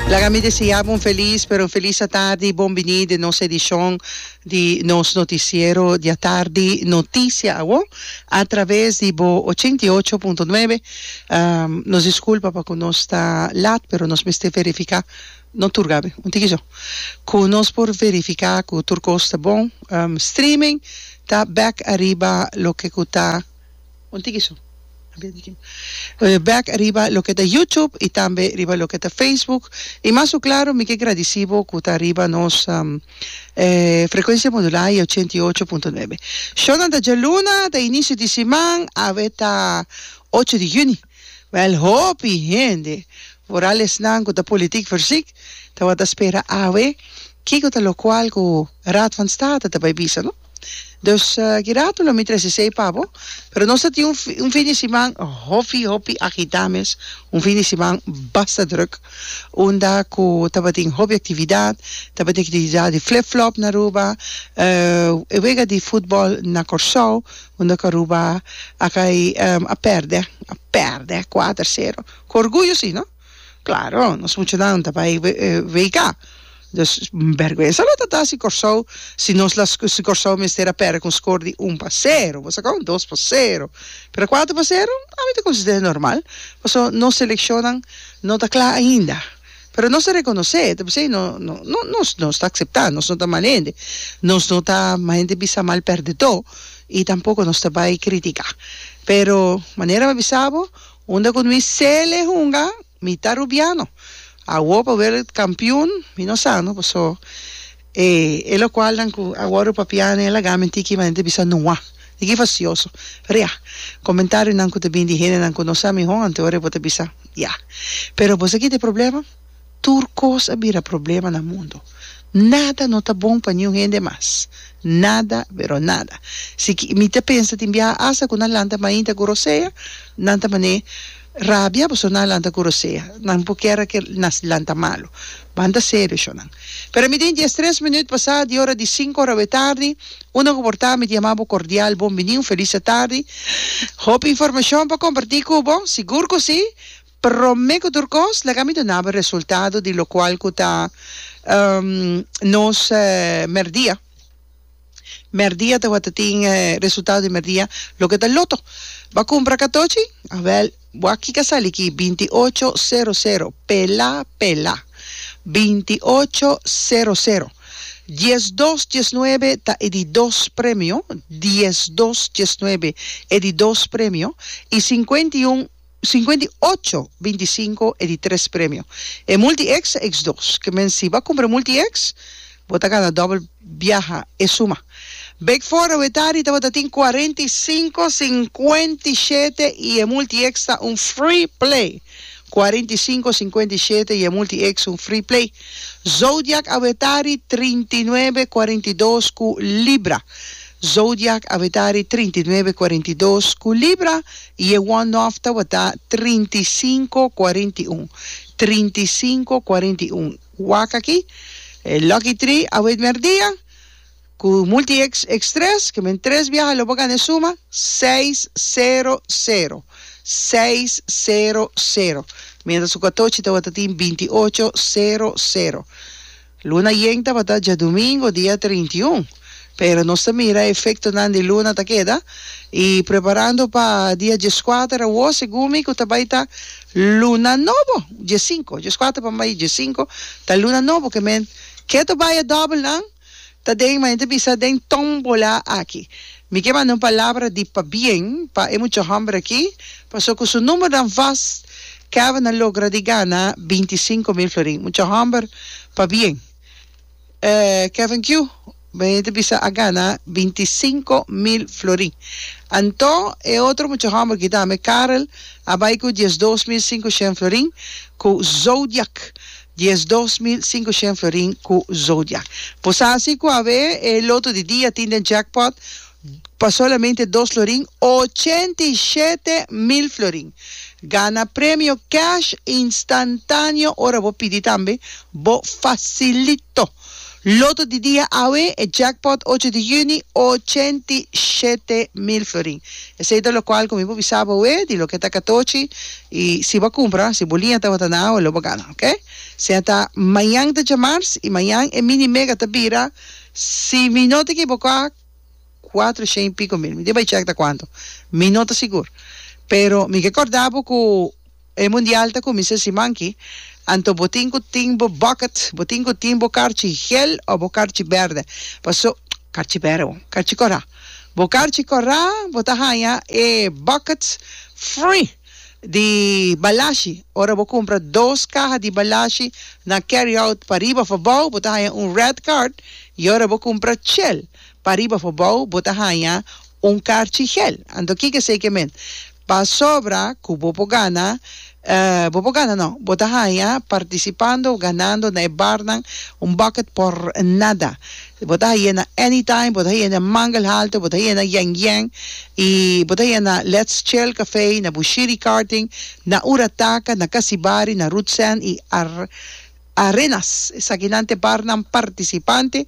Laga mi deseabo un felis, pero un felis atardi y bon bini den nos edicion di nos noticiero di atardi Noticia Awo a traves di bo ochenta i ocho punto nuebe. Nos disculpa pa cu nos ta laat, pero nos mester verifica, no tur Gaby, un tiki so, cu nos por verifica cu tur cos ta bon. Streaming ta back ariba loke cu ta. Un tiki su. Back riba loke ta YouTube y tambe riba loke ta Facebook. Y mas cu claro mi ke gradeci bo cu ta riba nos frecuencia modulada di ochenta y ocho punto nuebe. Shownan ta djaluna, ta inicio di siman, awe ta ocho di juni. Wel hopi hende, vooral esnan cu ta politiek versiek, tabata spera awe kico ta locual cu Raad van State ta bay bisa no. Dus kirato lo mi trece esey pa bo, pero nos ta tin un un fin di siman hopi hopi agita mes, un fin di siman basta druk unda cu tabatin hopi actividad, tabatin actividad di flip flop na Aruba, e wega di futbol na Corsou unda cu Aruba a cay a perde, a perde cuater cero, cu orguyo si no. Claro, nos muchanan ta bai WK. Dus berguensa lo ta ta si Corsou si nos la si Corsou mester a perde con score di un pa cero boso con dos pa cero pero cuater pa cero a mi ta considera normal paso nos seleccionnan no ta cla ainda pero nos ta reconoce ta bisai no no no nos nos ta acepta nos no ta mal hende nos no ta mal hende bisa mal perdedor y tampoco nos ta bai critica pero manera mi a bisa bo Unda cu mi sele hunga, mi ta rubiano. Awo pa wereld campeon, mi no sano, paso e e locualnan cu a wordo papia nen laga men tiki manera di bisa nua. Tiki facioso. Pero ya, comentarionan cu ta bini di hendenan cu no sa miho, anto e ora bo ta bisa, ya. Pero bo sa kico ta e problema? Tur kos a bira problema na mundu. Nada no ta bon pa niun hende mas. Nada, pero nada. Si ki, mi ta pensa tin biaha asta ku nan lanta mainta ku rosea, nan ta man'é rabia pasobra nan a lanta ku rosea. Nan por kier a ke nas lanta malu. Banta serio shonnan. Pero mi tin dies tres minüt pasá di ora di sinku ora awé tardi, unda ku por ta mi ta yama bo kordial bon bini, un felis atardi. Hopi informashon pa kompartí ku bo? Sigur ku sí! Prome cu tur cos, laga mi donaba resultado di locual cu ta nos merdia. Merdia tawata tin resultado di merdia, loke ta loto. Bo a cumpra catochi? Awel, bo a kica sali aki, binti ocho sero sero, pela, pela, binti ocho sero sero, dies dos diesnuebe ta e di dos premio, dies dos diesnuebe e di dos premio, y sincuenta y un. Sinkuenta i ocho, binti sinku e di tres premio. E Multi X ta X dos. Ke men si bo a kumpra Multi X, bo ta gana dòbel biaha e suma. Bek for a wetari tabata tin kuarenta i sinku, sinkuenta i shete i e Multi X ta un free play. Kuarenta i sinku, sinkuenta i shete i e Multi X un free play. Zodiak a wetari trinta i nuebe, kuarenta i dos ku Libra. Zodiak a wetari trinta i nuebe, kuarenta i dos ku Libra. I e wòrd nòf tabata trinta i sinku kuarenta i un. Trinta i sinku kuarenta i un. Wak aki, e Lucky Tri a wet mèrdia ku Multi X X tres, ke men tres biaha lo por gana e suma, seis sero sero. Seis sero sero. Miéntras ku Katochi tabata tin binti ocho sero sero. Luna yen tabata djadumingo dia trinta i un, pero nos ta mira efectonan di luna ta keda y preparando pa dia diescuater awo segun mi cu ta bay ta luna nobo, diescinco, diescuater pa bay diescinco ta luna nobo que men keto baya doublenan ta den, ma enta bisa den tombola aki. Mi ke manda un palabra di pabien pa e mucha hòmber aki, paso ku su numbernan vas Kevin a logra di gana binti i sinku mil florin. Mucha hòmber, pabien. E Kevin Q bini ta bisa a gana binti i sinku mil florin. Anto e otro mucha hòmber ki tambe, Karel, a bai ku diesdos mil sinku shen florin ku Zodiak. Diesdos mil sinkoshen florin ku Zodiak. Por sa asi ku awe e loto di dia tin den jackpot pa solamente dos florin, ochenta i shete mil florin. Gana premio cash instantaneo ora bo pidi tambe, bo fasilito. Loto di dia awe, e jackpot ocho di yüni, ochenta i shete mil florin. Esei ta lokual ku mi por bisa bo awe di loke ta katochi i si bo a kumpra, si bo liña tabata na awe lo bo gana, oke? Sea ta mañan ta djamars i mañan e mini mega ta bira, si mi no ta ekiboká, kuater shen i piko mil. Mi tin bai chèk ta kuantu, mi no ta sigur, pero mi ke kòrdá bo ku. E mundial ta kuminsá siman ki, anto bo tin ku tin bo bucket, bo tin ku tin bo karchi gel o bo karchi bèrdè. Pasó, karchi bèrdè bo, karchi kòrá. Bo karchi kòrá bo ta haña e bucket free di balashi. Ora bo kumpra dos kaha di balashi na carry out pa riba of abou bo ta haña un red card i ora bo kumpra chel pa riba of abou bo ta haña un karchi gel. Anto kiko esei ke men? Pasobra ku bo por gana, bo por gana no, bo ta haña partisipando òf ganando na e barnan un bòkket pòr nada. Bo ta hañ'é na Anytime, bo ta hañ'é na Mangelhalter, bo ta hañ'é na Yèn Yèn i bo ta hañ'é na Let's Chill Café, na Bushiri Karting, na Ura Taka, na Kasibari, na Root Sand i Arenas. Esakinan ta e barnan partisipante.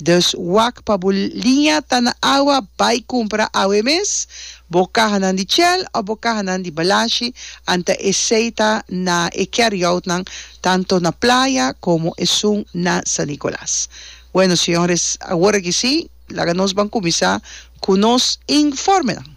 Dus wak pa bo liña ta na awa, bai kumpra awe mes bo kahanan di Shell òf bo kahanan di Balashi, anta esei ta na e carryoutnan tanto na playa komo esun na San Nicolas. Bueno, señores, awor aki sí laga nos ban kuminsá ku nos informenan.